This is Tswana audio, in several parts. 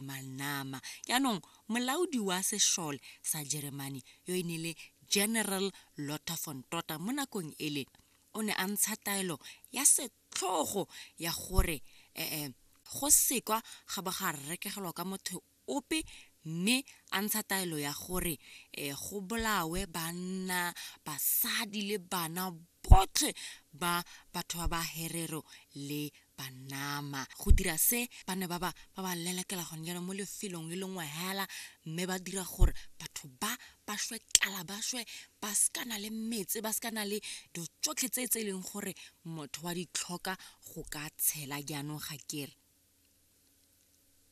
Manama. Jaanong, molaodi wa sešole sa Jeremane yo e ne le General Lothar von Totta mo nakong ele o ne a ntsha taelo ya setlhogo ya gore eh, go sekwa ga bo ga rekegelwa ka motho ope mme a ntsha taelo ya gore eh, go bolawe banna basadi le bana botlhe ba batho ba ba herero le banama go dira se ba ne ba ba ba ba lelekela gone jaanong mo lefelong le lengwe hela mme ba dira gore batho ba ba shwe tlala ba shwe ba sekana le metse ba sekana le dilo tsotlhe tse tse e leng gore motho wa di tlhoka go ka tshela jaanong ga kere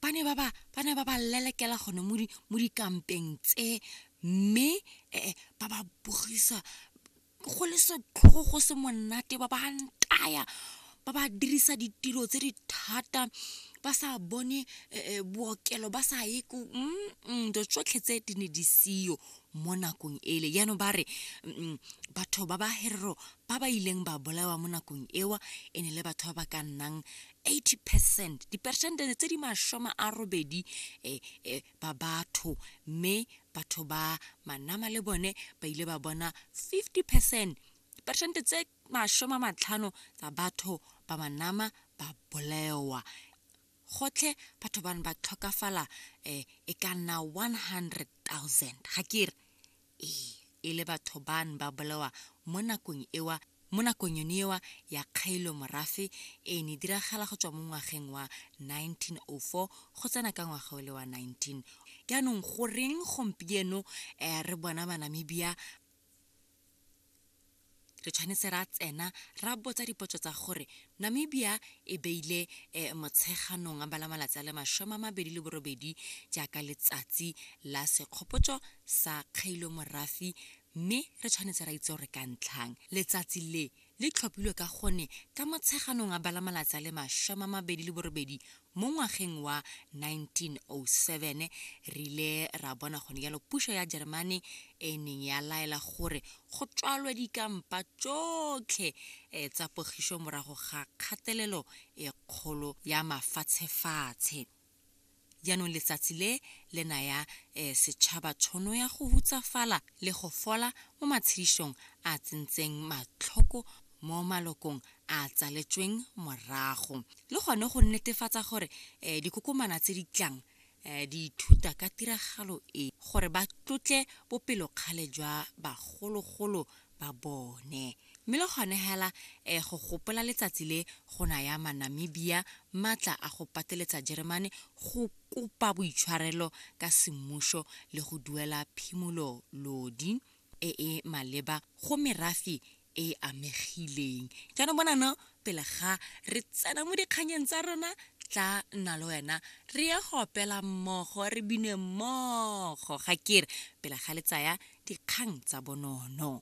ba ne ba ba ba ne ba ba lelekela gone mo di mo dikampeng tse mme ba ba bogisa go le setlhogo go se monate ba ba ntaya ba ba dirisa ditiro tse di thata ba sa bone eh, eh, bookelo ba sa ye ko dilo tsotlhe tse di ne di seyo mo nakong ele jaanong ba re batho ba ba herero ba ba ileng ba bolawa mo nakong ewa e ne le batho ba ba ka nnang 80 percent dipersente tse di masome a robedi um ba batho mme batho ba manama le bone ba ile ba bona 50 percent peresente tse masome a matlhano tsa batho ba manama ba bolewa gotlhe batho bane ba tlhokafala um e ka nna 100 000 ga ke re ee e le batho bane ba bolewa mo nakong ewa Mo nakong yone eo ya kgaelo morafe e ne diragala go tswa mo ngwageng wa 1904 go tsena ka ngwaga ole wa 19. Jaanong goreng gompieno re bona Banamibia re tshwanetse ra tsena ra botsa dipotso tsa gore Namibia e beile Motsheganong a bala malatsi a le masome a mabedi le borobedi jaaka letsatsi la sekgopotso sa kgaelo morafe Mme re tshwanetse ra itse gore ka ntlhang letsatsi le le tlhophilwe ka gone ka Motsheganong a bala malatsi a le masome a mabedi le borobedi mo ngwageng wa 1907, re ile ra bona gone jalo puso ya Jeremane e neng ya laela gore go tswalwe dikampa tsotlhe tsa pogiso morago ga kgatelelo e kgolo ya mafatshefatshe. Jaanong letsatsi le le naya eh, setšhaba tshono ya go hutsafala le go fola mo matshedisong a tsentseng matlhoko mo malokong a tsaletsweng morago le gone go netefatsa gore eh, dikokomana tse di tlang eh, di ithuta ka tiragalo e gore ba tlotle bopelokgale jwa bagologolo ba bone Mme le gone hela eh, go gopola letsatsi le go naya Manamibia matla a go pateletsa Jeremane go kopa boitshwarelo ka semmušo le go duela phimololodi e e maleba go merafe e e amegileng. Jaanong bonano, pele ga re tsena mo dikganyeng tsa rona, tla nna le wena re ye go opela mmogo, re bine mmogo, ga ke re, pele ga le tsaya dikgang tsa bonono.